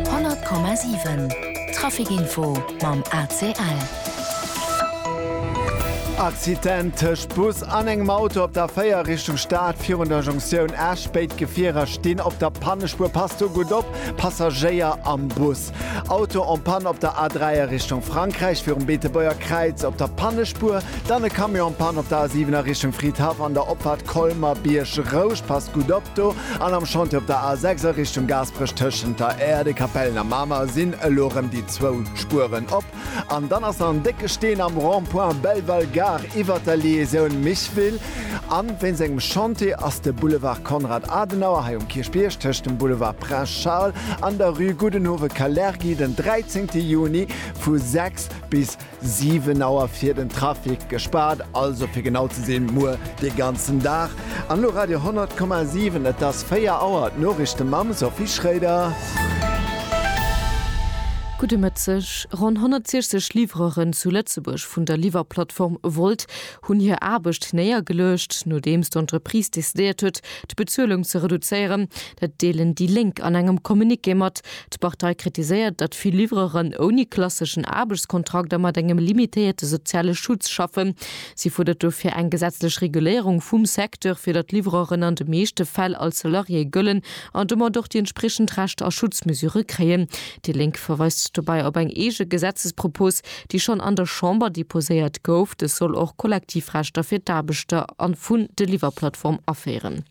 100,7 Trafic Info mam ACL. Accident tëscht Bus an engem Auto op der 4 Richtung Stad virun der Jonktioun Esch. Béid Gefierer stinn op der Pannespuer. Passt do gutt op, Passagéier am Bus. Nord-Est. Auto en panne op der A3 a Richtung Frankräich virum Beetebuerger Kräiz op der Pannespuer. Dann e Camion en panne op der A7 a Richtung Fridhaff an der Opfahrt Colmer Biergrousch. Passt gutt op do. An am Chantier op der A6 a Richtung Gaasperech tëschent der Aire des Capelles a Mamer sinn elo rëm déi zwou Spueren op. An dann ass nach en décke Steen am Rond-point Belval Gare iwwert der Liaisoun Micheville. An wéinst engem Chantier ass de Boulevard Konrad Adenauer hei um Kierchbierg tëscht dem Boulevard Prince Charles an der Rue Gudenhove-Kalergi den 13 Juni vu 6 bis 7 Auer fir den Trafic gespaart, also fir genau ze sinn muer dee ganzen Dag. An elo Radio 10,7, et ass 4 Auer, d'Noriichte mam Sophie Schroeder. Gudde Mëtteg. Ronn 160 Livreuren zu Lëtzebuerg vun der Liwwerplattform Wolt hunn hir Aarbecht néiergeluecht, nodeems d'Entreprise decidéiert huet, d'Bezuelung ze reduzéieren. Dat deelen déi Lénk an engem Communiqué mat. D'Partei kritiséiert, datt vill Livreuren ouni klasseschen Aarbechtskontrakt a mat engem limitéierte soziale Schutz schaffen. Si fuerdert dofir eng gesetzlech Reguléierung vum Secteur, fir datt d'Livreuren an de meeschte Fäll als Salarié gëllen an domat och déi entspriechend Rechter a Schutzmesure kréien. Déi Lénk verweist dobäi op eng eege Gesetzespropos, déi schonn an der Chamber deposéiert gouf. Dës soll och Kollektivrechter fir d'Aarbechter a vun de Liwwerplattform aféieren.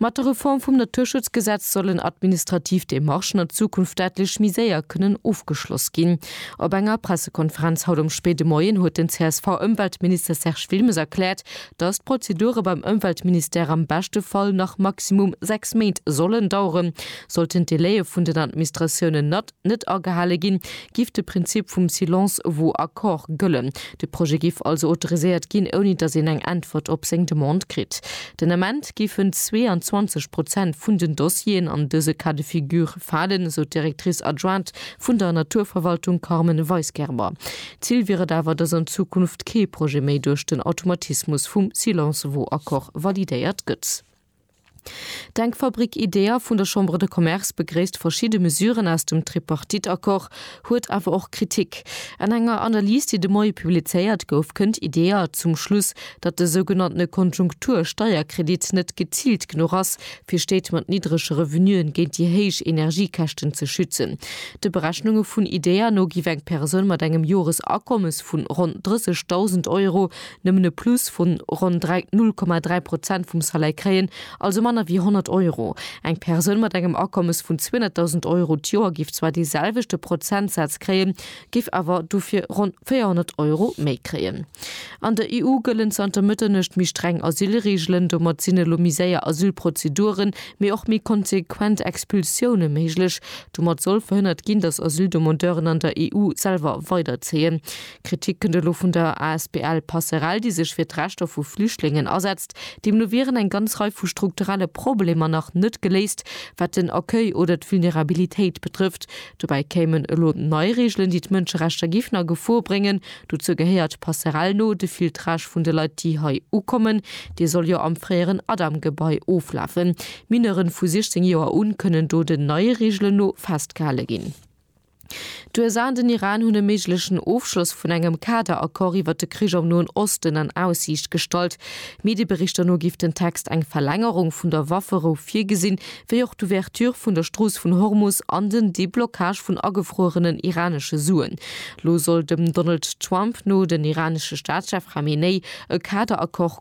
Mat der Reform vum Naturschutzgesetz sollen administrativ Demarchen an Zukunft däitlech méi séier kënnen ofgeschloss ginn. Op enger Pressekonferenz haut am spéide Moien huet den CSV-Ëmweltminister Serge Wilmes erkläert, dass d'Prozedure beim Ëmweltministère am beschte Fall nach maximum sechs Méint sollen daueren, sollten d'Delaie vun den Administratiounen net net agehale ginn, giff de Prinzip vum silence vaut accord gëllen. De Projet giff also autoriséiert ginn, ouni datt een eng Äntwert op seng Demande kritt. Den Ament giffen 22 Prozent vun den Dossieren an dëse Cas de figure falen, esou d'Directrice adjointe vun der Naturverwaltung Carmen Weisgerber. Zil wier et awer, datt an Zukunft kee Projet méi duerch den Automatismus vum silence vaut accord validéiert gëtt. D'Denkfabrik IDEA vun der Chambre de Commerce begréisst verschidde Mesuren aus dem Tripartite-Accord, huet awer och Kritik. An enger Analys, déi de Moie publizéiert gouf, kënnt IDEA zum Schluss, datt de sougenanntene Konjunktur-Steierkredit net geziilt genuch ass, fir Stéit mat niddrege Revenuen géint déi héich Energiekäschten ze schützen. De Berechnunge vun IDEA no giff eng Persoun mat engem Joresakommes vun ronn 30.000 Euro nëmmen e Plus vu ronn 0,3 Prozent vum Salaire kréien, also manner wéi 100 Euro. Eng Persoun mat engem Akommes vun 200.000 Euro d'Joer géif zwar dee selwechte Prozentsaz kréien, géif awer dofir ronn 400 Euro méi kréien. An der EU gëllen zanter Mëtternuecht méi streng Asylreegelen. Domat sinn elo méi séier Asylprozeduren, mee och méi konsequent Expulsioune méiglech. Domat soll verhënnert ginn, datt Asyldemandeuren an der EU selwer weiderzéien. D'Kritik kënnt elo vun der asbl Passerell, déi sech fir d'Rechter vu Flüchtlingen asetzt. Deemno wieren eng ganz Rei vu strukturelle Problemer nach net geléist, wat den Accueil oder d'Vulnerabilitéit betrëfft. Dobäi kéimen elo nei Reegelen, déi d'Mënscherechter géifen a Gefor bréngen. Dozou gehéiert Passerell no de Filtrage vun de Leit, déi hei ukommen. Dee soll jo am fréieren Adam-Gebai oflafen. Mineuren vu 16 Joer un kënnen do den neie Reegelen no festgehale ginn. D'USA an den Iran hunn e méiglechen Ofschloss vun engem Kaderaccord iwwer de Krich am Noen Osten an Aussiicht gestallt. Medieberichter no géif den Text eng Verlängerung vun der Wafferou virgesinn, wéi och d'Ouverture vun der Strooss vun Hormus an den Deblockage vun agefruerenen iranesche Suen. Lo soll dem Donald Trump no den iranesche Staatschef Khamenei e Kaderaccord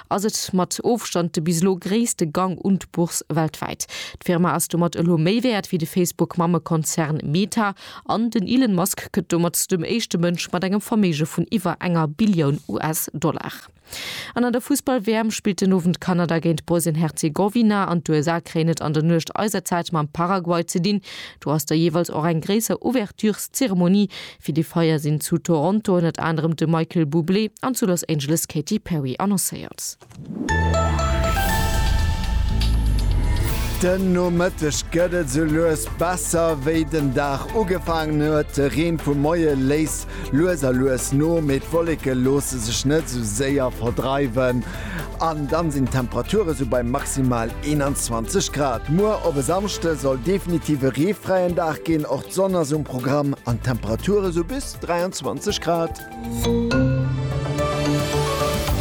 ass et mat Ofstand de bis elo gréisste Gang un d'Bourse weltwäit. D'Firma ass domat elo méi wäert wéi de Facebook-Mammekonzern Meta an den Elon Musk gëtt domat dem éischte Mënsch mat engem Verméige vun iwwer enger Billioun US-Dollar. An an der Fussball-WM spillt den Owend Kanada géint Bosnien-Herzegowina an d'USA kréien et an der Nuecht eiserzäit mam Paraguay ze dinn. Do ass da jeeweils och eng gréisser Ouvertureszeremonie Fir déi Feier sinn zu Toronto ënnert anerem de Michael Bublé an zu Los Angeles d'Katy Perry annoncéiert. Den Nomëtteg gëtt et sou lues besser, wéi den Dag ugefaangen huet. De Reen vum Moie léisst lues a lues no, mee d'Wolleke loosse sech net sou séier verdreiwen. An dann sinn d'Temperature sou bei maximal 21 Grad. Muer op e Samschde soll definitiv e reefräien Dag ginn, och d'Sonn ass um Programm an d'Temperature sou bis 23 Grad.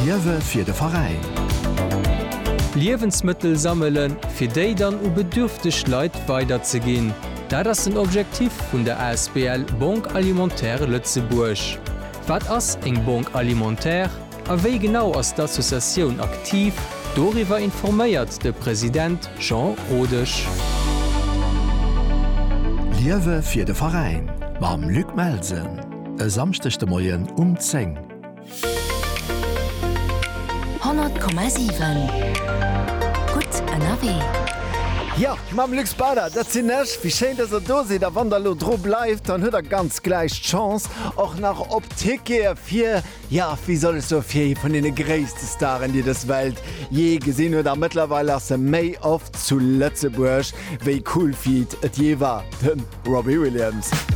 Liewe fir de Veräin. Liewensmëttel sammele fir déi dann u bedürfteg Leit weiderzeginn, dat ass den Objektiv vun der asbl Banque Alimentaire Lëtzebuerg. Wat ass eng Banque Alimentaire? A wéi genau ass d'Associatioun aktiv? Doriwwer informéiert de President Jean Rodesch. Liewe fir de Veräin mam Luc Melsen e Samschdeg de Moien um 10. 100,7 Gutt ënnerwee. Jo, mam Luc Speider, dat sinn ech. Wéi schéin, dass der do sidd. A wann der elo dru bleift, dann huet der ganz gläich d'Chance och nach op Tickete fir. Ja, wéi soll ech soen, fir ee vun deene gréisste Staren, déi dës Welt jee gesinn huet. A mëttlerweil ass e méi oft zu Lëtzebuerg, wéi Cool Feet et jee war, de Robbie Williams.